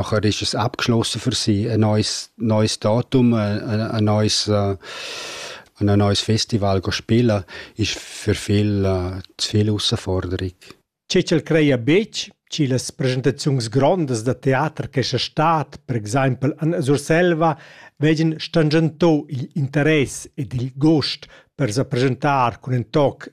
nachher ist es abgeschlossen für sie, ein neues, neues Datum, ein, ein neues, äh, ein neues Festival spielen, ist für viele äh, zu viel Herausforderung. Cecel crea betg las presentaziuns grondas da teater che sia stat, per exempel an Surselva, vegin stangentò il interess ed il gust per sa presentar cun in toc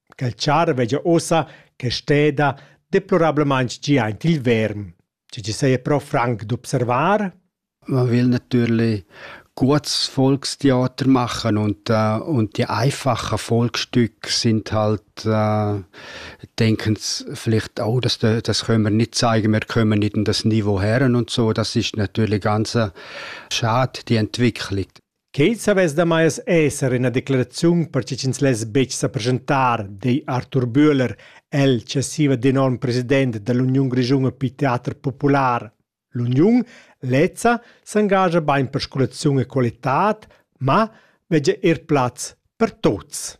Quel char vegia ussa che steda deplorablamein gia aint il verm, tgi chi seia però franc d'observar. Man will natürlich gutes Volkstheater machen und, äh, und die einfachen Volksstücke sind halt, äh, denken vielleicht auch, dass de, das können wir nicht zeigen, wir kommen nicht in das Niveau her und so. Das ist natürlich ganz äh, schade, die Entwicklung. Quei savess damais esser ina declaraziun per che ch'ins less betg sa presentar, di Arthur Bühler, el successiva d'enorm president dall'Uniun grischuna per teater popular. L'uniun lezza s'engascha bein per scolaziun e qualitad, ma vegia er plaz per tuts.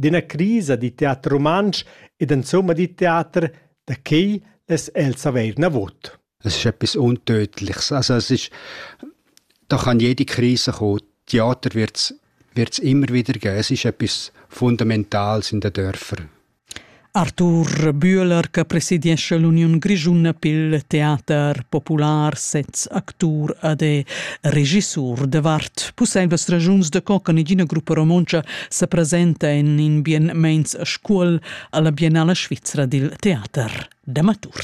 d'üna crisa da teater rumantsch ed insomma da teater, da quai less el savair navot. Es ist etwas Untödliches. Also es ist, da kann jede Krise kommen. Theater wird es immer wieder geben. Es ist etwas Fundamentales in den Dörfern. Arthur Bühler che presidiescha l'uniun grischuna pil teater popular sez actur ed è regissur davart pusseivlas ragiuns da co che negina gruppa romontscha sa presenta en in bien meins scuol alla biennala svizra dil teater d'amatur.